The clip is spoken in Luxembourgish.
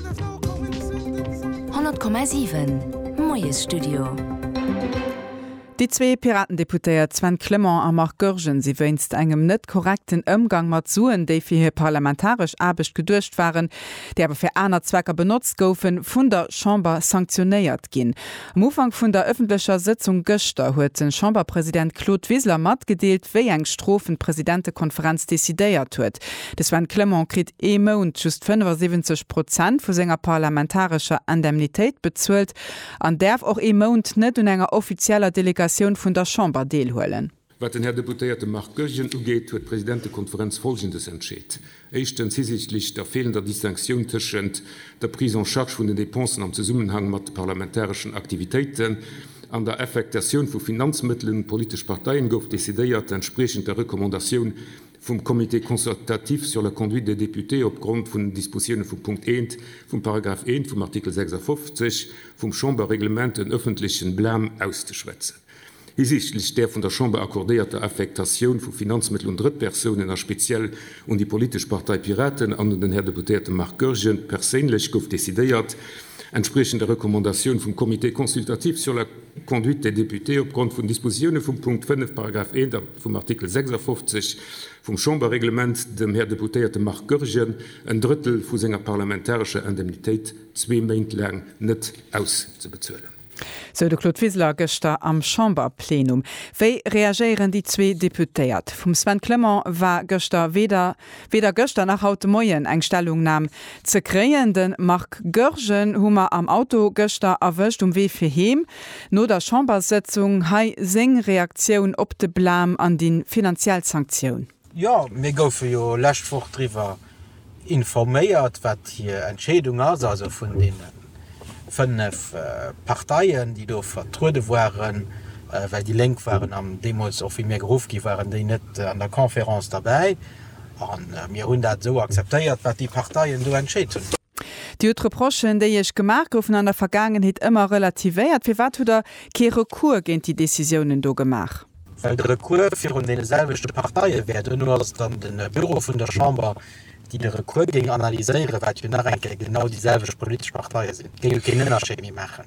100,7 Moiesstudio. Déi zwee Piratendeputéiert Sven Clement a Marc Goergen si wéinst engem net korrekten Ëmgang mat Suen, déi fir hir parlamentaresch Aarbecht geduecht waren, déi awer fir aner Zwecker benotzt goufen, vun der Chamber sanktionéiert ginn. Um Ufank vun der ëffentlecher Sëtzung gëschter huet de Chamberpresident Claude Wiseler matgedeelt, wéi eng Strofen d'Presidentekonferenz decidéiert huet. De Sven Clement kritt. ee Mount just 75 Prozent vu senger parlamentarescher Indemnitéit bezuelt an däerf och ee Mount net un enger offizieller Delegatioun vun der Chamber deelhuelen. Wat den Här Deputéierte Marc Goergen ugeet, huet d'Presidentekonferenz Folgendes entscheet, Éischtens, hisiichtlech der feelender Distinctioun tëschent der Prise en charge vun den Dépensen am Zesummenhang mat de parlamentareschen Aktivitéiten an der Affectatioun vu Finanzmëttelen un d'politesch Parteien gouf decidéiert, entspriechend der Recommandatioun vum Comité consultatif sur la conduite des députés opgrond vun den Dispositioune vum Punkt 1 vum Paragraph 1 vum Artikel 56 vum Chamberreglement en ëffentlechen Blâme auszeschwätzen hisiichtlech där vun der Chamber accordéierter Affektatioun vu Finanzmëttel un Drëttpersounen a speziell un déi politesch Partei Piraten an un den Här Deputéierte Marc Goergen perséinlech, gouf decidéiert, entspriechend der Recommandatioun vum Comité consultatif sur la conduite des députés opgrond vun den Dispositioune vum Punkt 5 Paragraph 1 vum Artikel 56 vum Chamberreglement dem Här Deputéierte Marc Goergen en Drëttel vu senger parlamentarescher Indemnitéit zwee Méint laang net auszebezuelen. Sou de Claude Wiseler gëschter am Chamberplenum. Wéi reagéieren déi zwee Deputéiert? Vum Sven Clement war gëschter weder. Weder gëschter nach haut de Moien eng Stellungnam ze kréien. De Marc Goergen hu mer am Auto gëschter erwëscht, um Wee fir heem no der Chamberssëtzung. Hei seng Reaktioun op de Blam an déi finanziell Sanktioun. Jo, mir goufe jo lescht Woch driwwer informéiert, wat hir Entscheedung ass, also vun deene fënnef Parteien, déi do vertruede waren, well déi Lénk waren am, deemools och wéi mir geruff gi waren, déi net an der Conférence derbäi. A mir hunn dat esou akzeptéiert, wat déi Parteien do entscheet hunn. Dir hutt d'Reprochen, déi Iech gemaach goufen an der Vergaangenheet, ëmmer relativéiert. Firwat hutt Der kee Recours géint déi Décisiounen do gemaach? Well de Recours virun deene selwechte Parteie wär. Duerno ass et an de Büro vun der Chamber déi de Recours géing analyséieren, wat jo nach eng Kéier genau déi selwecht politesch Parteie sinn, géing jo keen Ënnerscheed méi maachen.